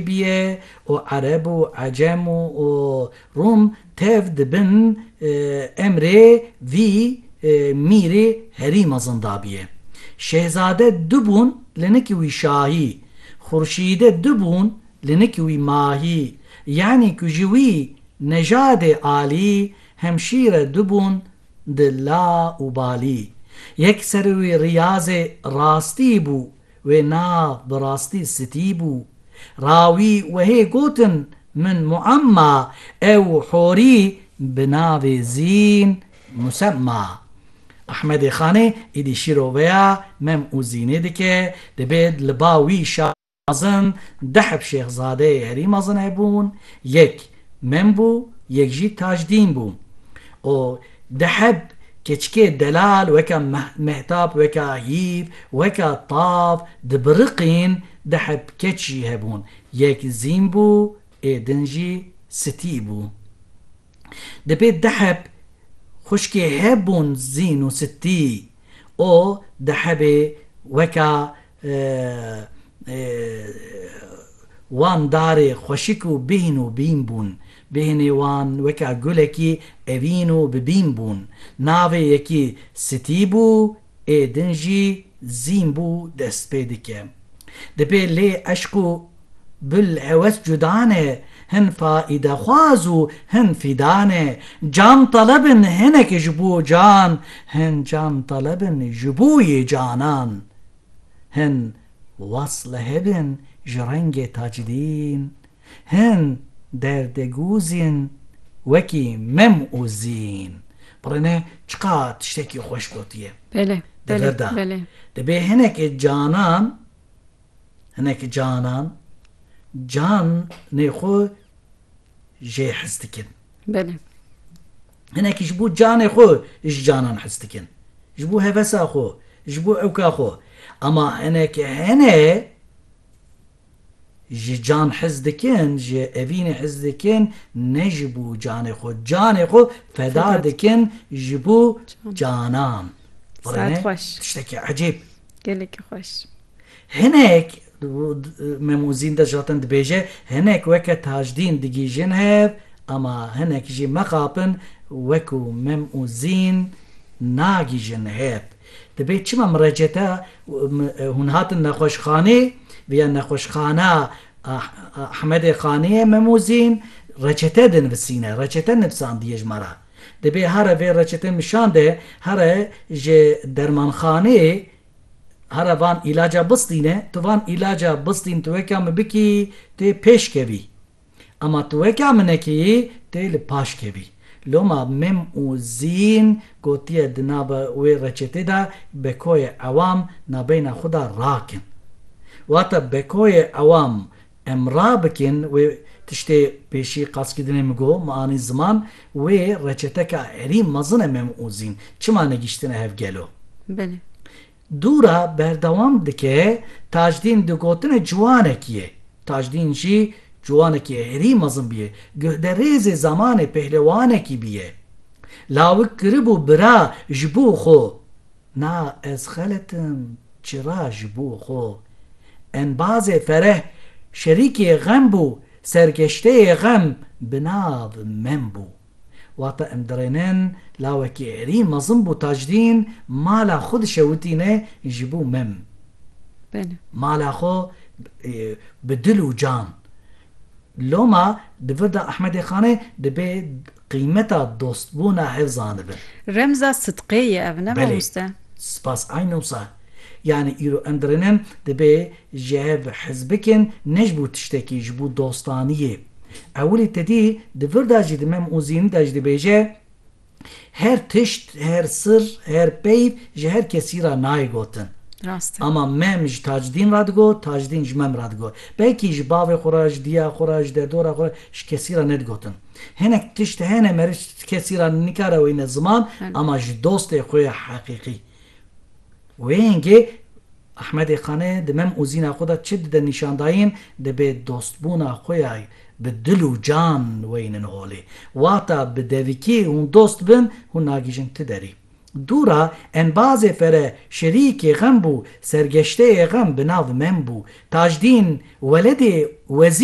Bîye û Ereb û Ecem û Rûm tev dibin emrê vî mîrê herî mezin dabîye. Şehzade du bûn li nikî wî şahî, xurşîde du bûn li nikî wî mahî, yanî ku ji wî nejadê alî hemşîre du bûn di la û balî. Yek ser wî riyazê rastî bû Wê nav bi rastî sitî bû. Rawî wehê gotin, Min muemma ew horî bi navê Zîn, musemma. Ehmedê Xanê îdî şîroveya Mem û Zînê dike, dibêt li ba wî şax mezin deh şêxzadeyê herî mezin hebûn, yek Mem bû, yek jî Tajdîn bû. O Diheb, keçikê delal weka mehtap, weka hîv, weka tav dibiriqîn, diheb keç jî hebûn, yek zîn bû ê din jî sitî bû. Dibê diheb xuşkê hebûn zîn û sitî. O dihebê weka Wan darê xweşik û bîn û bîn bûn. Bînê wan weke gulekî evîn û bi bîn bûn. Navê yekî Sitî bû, ê din jî Zîn bû dest pê dike. Di pê lê eşq û. Gul hewes cuda ne, hin faîdexwaz û hin fîda ne. Can teleb in hinek ji bo can, hin can teleb in ji bo yê canan. Hin was leheb in ji rengê tacdîn, hin derdê gûz in wekî mem û zîn. Bire ne çiqa tiştekî xweş gotiye. Belê, belê, belê. Divê hinek canan. hinek canan canê xwe jê hez dikin. Belê. Hinek ji bo canê xwe ji canan hez dikin. Ji bo hevesa xwe, ji bo ewka xwe. Ama hinek hene ji can hez dikin, ji evînê hez dikin, ne ji bo canê xwe. Canê xwe feda dikin ji bo canan. Saet xweş. Tiştekî ecêb. Gelekî xweş. Hinek Memûzîn de ji hatin dibêje, hinek weke Tajdîn digîjin hev, ama hinek jî mexapin wekû Memûzîn nagîjin hev. Dibê çima mireceta hûn hatin nexweşxanê viya nexweşxana Ahmedê Xaniyê Memûzîn reçete dinvisîne, reçete nivsandiye ji me re. Dibê here vê reçete nişan de here ji dermanxanê Hara van îlaca bistîn e, tu van îlaca bistîn tu weka min bikî tê pêş kevî. Ema tu weka min nekî tê li paş kevî. Loma Mim û Zîn gotiye di nava wê reçetê de bekoyê ewam nabeyna xwe de rakin. Wata bekoyê ewam Em rabikên wê tiştê pêşî qasgidinê min got, min anî ziman wê reçeteka erî mezin e mem û zîn çima negîştine hev gelo? Belê. Dûra berdewam dike, Tajdîn di gotine ciwanekî ye. Tajdîn jî ciwanekî erî mezin bûye. Guhde rêzê zamanê pehlewanekî bûye. Lawik kiribû bira ji bo xwe. Na ez xelet im çira ji bo xwe. Embazê Fereh şerîkê xem bû, sergeşteyê xem bi nav Mem bû. Wata em dirênin lawekî herî mezin bû Tajdîn mala xwe dişewitîne ji bo Mem. Mala xwe bi dil û can. Loma di vir de Ehmedê Xanê dibe Qîmeta dostbûna ev zanibin. Remza sidqê ye ev ne mamoste? Belê. Spas ayne wisa. Yanî îro em dirinin dibê ji hev hez bikin ne ji bo tiştekî ji bo dostaniyê. Ewilî tedî di vir de jî di Mem Ozînî de jî dibêje Her tişt, her sir, her peyv ji her kesî re nayê gotin. Rast e. Ama Mem ji Tacdîn re digot, Tacdîn ji Mem re digot. Belkî ji bavê xwe re, ji diya xwe re, ji dedora xwe re ji kesî re nedigotin. Hinek tişt hene meriç kesî ra nikare weyne ziman ama ji dostê xwe ya heqîqî. Wê hingê Ahmedê Qane di mem û zîna xwe de çi dide nîşandayîn dibê dostbûna xwe ya bi dil û can weynin holê. Wata bi devikî hûn dost bin hûn nagihîjin ti derî. Dû ra enbazê fere şerîkê xem bû sergeşteyê xem bi nav mem bû. Tajdîn weledê Wezî.